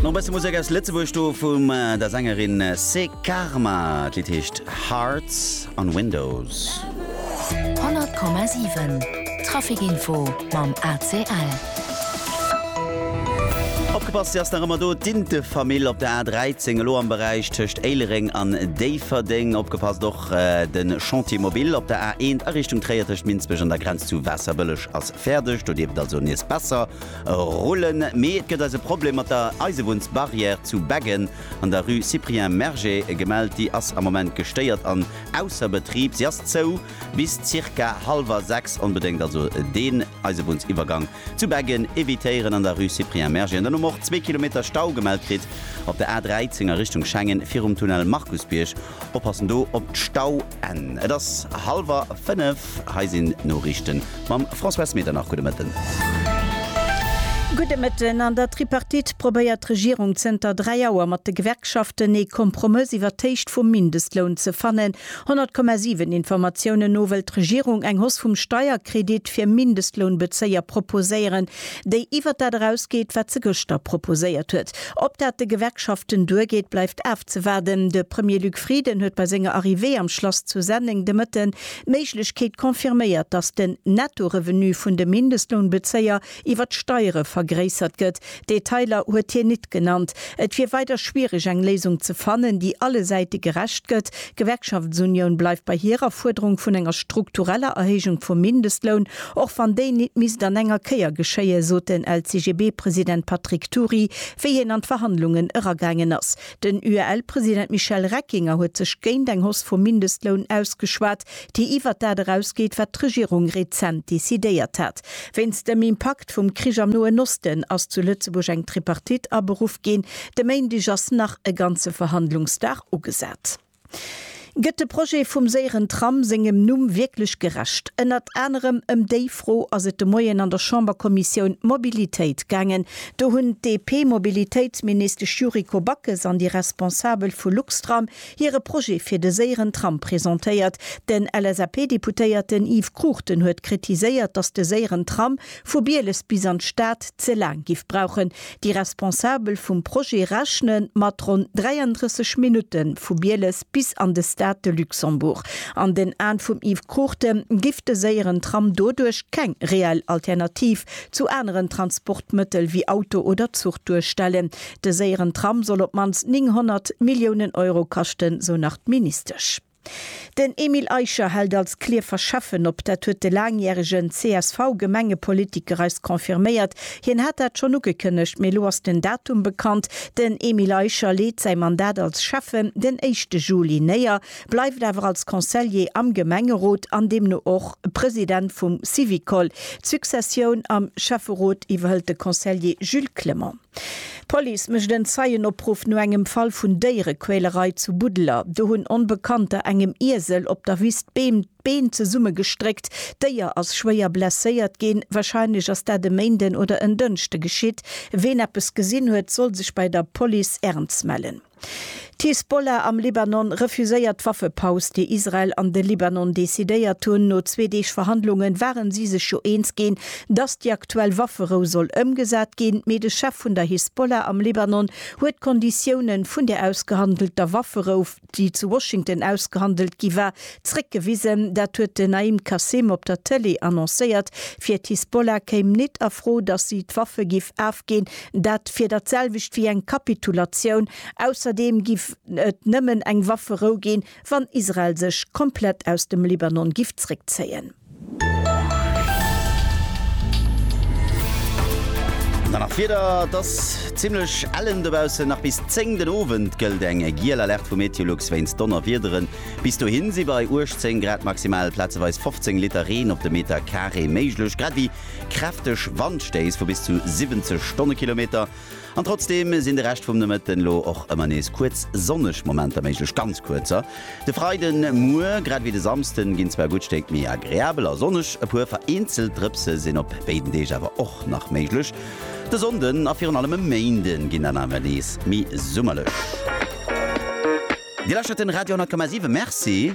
Nach e bësse Musek aus Lëtzebuerg do vum der Sängerin C'est Karma. D'Lidd heescht Hearts on Windows. 100,7 Traficinfo mam ACL. Opgepasst, se ass nach ëmmer do, d'Intefamill op der A13, elo am Beräich tëscht Éilereng an Déifferdeng. Opgepasst och, de Chantier mobile op der A1 a Richtung Tréier tëscht Minsbech an der Grenz zu Waasserbëlleg ass fäerdeg. Do dierft et also nees besser Rullen, mee et gëtt eis e Problem mat der Eisebunnsbarrière zu Beggen an der Rue Cyprien Merger gemellt. Déi ass am Moment gestéiert an ausser Betrib. Se ass zou bis zirka hallwer 6. Onbedéngt also deen Eisebunnsiwwergang zu Beggen evitéieren an der Rue Cyprien Merger. An dann hu mer och zwee Kilometer Stau gemellt kritt op der A 13 a Richtung Schengen virum Tunnel Markusbierg. Oppassen do op d'Stauenn. Et ass hallwer 5, hei sinn d'Noriichten mam François S. Medernach. Gudde Mëtten. Gudde Mëtten. An der Tripartite probéiert d'Regierung zënter dräi Auer mat de Gewerkschaften ee Kompromëss iwwert d'Héicht vum Mindestloun ze fannen. 100,7 Informatiounen no wëll d'Regierung eng Hausse vum Steierkredit fir Mindestlounbezéier proposéieren. déi iwwert dat erausgeet, wat se gëschter proposéiert huet. Ob dat de Gewerkschaften duergeet, bleift afzewaarden. De Premier Luc Frieden huet bei senger Arrivée am Schlass zu Senneng de Mëtten d'Méiglechkeet confirméiert, datt den Nettorevenu vun de Mindestlounbezéier iwwer d'Steiere vergréissert gëtt. Detailer huet hien nit genannt. Et wier weider schwiereg eng Léisung ze fannen, déi alle Säite gerecht gëtt, D'Gewerkschaftsunioun bleift bei hirer Fuerderung vun enger struktureller Erhéijung vum Mindestloun, och wann déi nit misst an enger Kéier geschéien, sot den LCGB-President Patrick Thury, wéi hien an d'Verhandlungen eragaangen ass. Den UEL-President Michel Reckinger huet sech géint eng Hausse vum Mindestloun ausgeschwat, déi iwwert dat erausgeet, wat d'Regierung rezent decidéiert hat. Wéinst dem Impakt vum Krich am Noen Osten ass zu Lëtzebuerg eng Tripartite aberuff ginn. De Méindeg ass nach e ganze Verhandlungsdag ugesat. Gëtt de Projet vum séieren Tram sengem Numm wierklech gerecht? Ënnert anerem ëm déi Fro ass et de Moien an der Chamberkommissioun Mobilitéit gaangen. Do hunn d'DP-Mobilitéitsministesch Yuriko Backes an déi Responsabel vu Luxtram hire Projet fir de séieren Tram presentéiert. Den LSAP-Deputéierten Yves Cruchten huet kritiséiert, datt de séieren Tram vu Bieles bis an d'Stad ze laang giff brauchen. Déi Responsabel vum Projet rechne mat ronn 33 Minutte vu Bieles bis an de Stade de Luxembourg. An den Aen vum Yves Cruchten giff de séieren Tram doduerch keng reell Alternativ zu aneren Transportmëttel wéi Auto oder Zuch duerstellen. De séieren Tram soll op d'mannst 900 Milliounen Euro kaschten, sou nach d'Ministesch. Den Emile Eicher hält als Clierfer Schäffen op. Dat huet de laangjäregen CSV-Gemengepolitiker eis confirméiert. Hien hat dat schonn ugekënnegt, mee elo ass den Datum bekannt. Den Emile Eicher leet säi Mandat als Schäffen den éischte Juli néier, bleift awer als Consellier am Gemengerot an deemno och President vum Syvicol. D'Successioun am Schäfferot iwwerhëlt de Consellier Jules Clement. D'Police mécht en Zeienopruff no engem Fall vun Déierequälerei zu Buddeler. Do hunn Onbekannter engem Iesel op der Wiss d'Beem d'Been zesummegestréckt. D'Déier ass schwéier blesséiert ginn. Warscheinlech ass dat e Méinden oder en Dënschde geschitt. Ween eppes gesinn huet, soll sech bei der Police Ernz mellen. D'Hisbollah am Libanon refuséiert d'Waffepaus, déi Israel an de Libanon decidéiert hunn. No zwee Deeg Verhandlunge ware si sech jo eens ginn, datt déi aktuell Wafferou soll ëmgesat ginn, mee de Chef vun der Hisbollah am Libanon huet d'Konditiounen vun där ausgehandelter Wafferou, déi zu Washington ausgehandelt gi war, zréckgewisen. Dat huet den Naim Qassem op der Tëlee annoncéiert. Fir d'Hisbollah kéim nit a Fro, datt si d'Waffe giff afginn, Dat wier dat selwecht wéi eng Kapitulatioun. Ausserdeem giff et nëmmen eng Wafferou ginn, wann Israel sech komplett aus dem Libanon giff zréckzéien. Dann nach d'Wieder, Et ass zimmlech ellen dobaussen. Nach bis 10 den Owend gëllt eng giel Alerte vu Meteolux wéinst Donnerwiederen. Bis dohi si bei 18 Grad maximal plazeweis 15 Liter Reen op de Meter Carré méiglech, grad ewéi Kräfteg Wandstéiss vu bis zu 70 Stonnekilometer an trotzdeem sinn de Rescht vum Nomëtten elo och ëmmer nees kuerz sonneg Momenter méiglech, ganz kuerzer. De Freiden Muer grad ewéi de Samsden ginn zwar e gutt Stéck méi agreabel a sonneg, e puer vereenzelt Drëpse sinn op béiden Deeg awer och nach méiglech. De Sonnden a virun allem e Méinden ginn dann awer nees méi summerlech. Dir lauschtert den Radio 10,7. Merci.